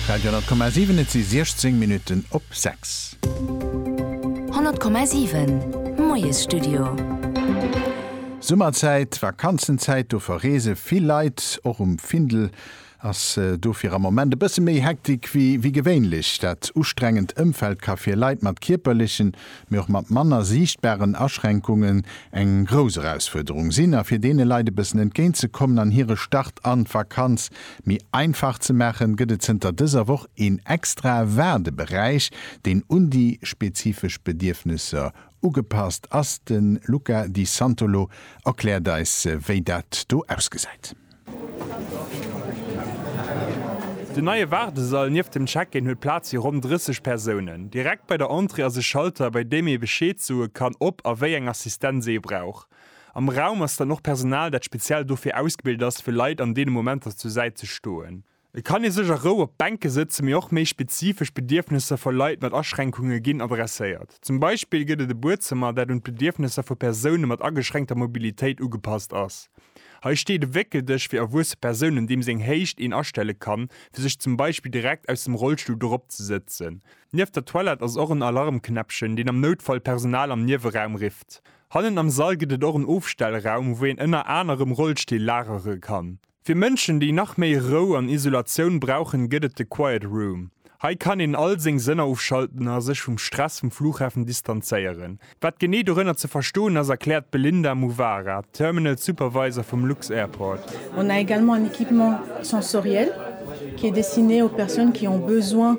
Radio 10,7 Et si 16 Minutten op 6. 10,7 Moiesstudio. Summerzäit, Vakanzenzäit, do verreese vill Leit. Och um Findel ass dofir am Moment e bësse méi Hektik wéi wéi gewéinlech. Dat ustrengend Ëmfeld ka fir Leit mat kierperlechen mee och mat manner siichtbaren Aschränkungen eng grouss Erausfuerderung sinn a fir deene Leit e bëssen entgéint ze kommen an hire Start an d'Vakanz méi einfach ze maachen, gëtt et zënter dëser Woch een extrae Waardeberäich, deen un déi spezifesch Bedierfnesser ugepasst ass. De Luca Di Santolo erkläert eis, wéi dat do ausgesäit. Den neie Waardesall nieft dem Check-in huet Plaz fir ronn 30 Persounen. Direkt bei der Entrée ass e Schalter, bei deem ee Bescheed soe kann, ob a wéi eng Assistenz ee brauch. Am Raum ass dann och Personal, dat speziell dofir ausgebilt ass, fir Leit an deene Momenter zur Säit ze stoen. Et kann ee sech a Rou op d'Bänke sëtzen, mee och méi spezifesch Bedierfnesser vu Leit mat Aschränkunge ginn adresséiert. Zum Beispill gëtt et e Buedzëmmer, dat un d'Bedierfnesser vu Persoune mat ageschränkter Mobilitéit ugepasst ass. Hei steet e Wéckeldësch fir erwuesse Persounen, deem seng Héicht een astelle kann, fir sech zum Beispill direkt aus dem Rollstull dorop ze sëtzen. Nieft der Toilette ass och en Alarmknäppchen, deen am Noutfall d'Personal am Nieweraum rifft. Hannen am Sall gëtt et och en Ofstellraum, wou een ënner anerem Rollstill lagere kann. Fir Mënschen, déi nach méi Rou an Isolatioun brauchen, gëtt et de Quiet Room. Hei kann een all seng Sënner ofschalten a sech vum Stress vum Fluchhafen distanzéieren. Wat genee dorënner ze verstoen ass, erkläert d'Belinda Muvara, Terminal Supervisor vum Lux-Airport. On a également un équipement sensoriel qui est destiné aux personnes qui ont besoin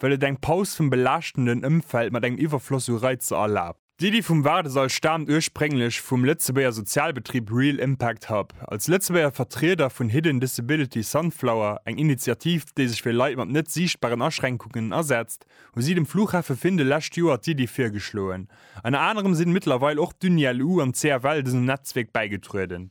well et eng Paus vum belaaschtenden Ëmfeld mat engem Iwwerfloss u Reizer erlaabt. D'Iddi vum Waardesall staamt ursprénglech vum Lëtzebuerger Sozialbetrib Real Impact Hub, als Lëtzebuerger Vertrieder vun Hidden Disability Sunflower, eng Initiativ, déi sech fir Leit mat net siichtbaren Aschränkungen asetzt, hu si dem Fluchhafe Findel lescht Joer d'Iddi virgeschloen. Ënner anerem sinn mëttlerweil och d'Uni-LU an d'CFL dësem Netzwierk bäigetrueden.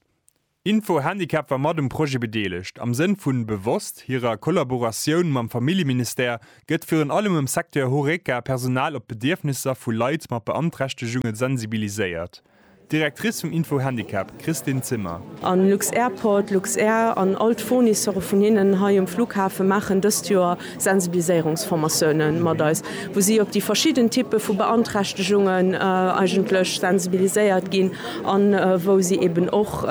Info Handicap war mat um Projet bedeelegt. Am Sënn vu bewosst hirer Kollaboratioun mam Familljeministère gëtt virun allem am Secteur Horeca Personal op d'Bedierfnisser vu Leit mat Beanträchtegunge sensibiliséiert. D'Directrice vum Info Handicap, Christine Zimmer. A Lux-Airport, Luxair an all d'Fournisseure vun hinnen hei um Flughafe maachen dëst Joer Sensibiliséierungsformatiounen mat eis, wou si op déi verschidden Typpe vu Beanträchtegungen eigentlech sensibiliséiert ginn an wou si eeben och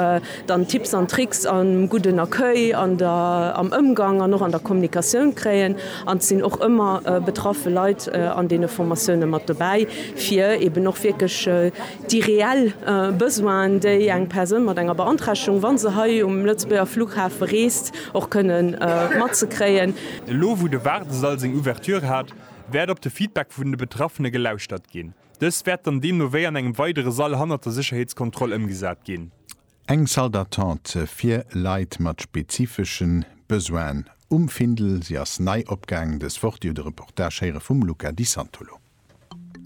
dann Tipps an Tricks am gudden Accueil, an der, am Ëmgang an och an der Kommunikatioun kréien. An et sinn och ëmmer betraffe Leit an deene Formatiounen mat dobäi, fir eeben och wierklech Déi reell Besoinen, déi eng Persoun mat enger Beanträchtegung, wa se hei um Lëtzebuerger Fluchhafe reest, och kënne mat ze kréien. Elo wou de Waardesall seng Ouverture hat, wäert op de Feedback vun de Betraffene gelauschtert ginn. Dës wäert dann deemno wéi an engem weidere Sall hannert der Sécherheetskontroll ëmgesat ginn. Eng Salle d'attente fir Leit mat spezifesche Besoinen um Findel. Si ass nei opgaangen dës Woch. Dir hutt e Reportage héiere vum Luca Di Santolo.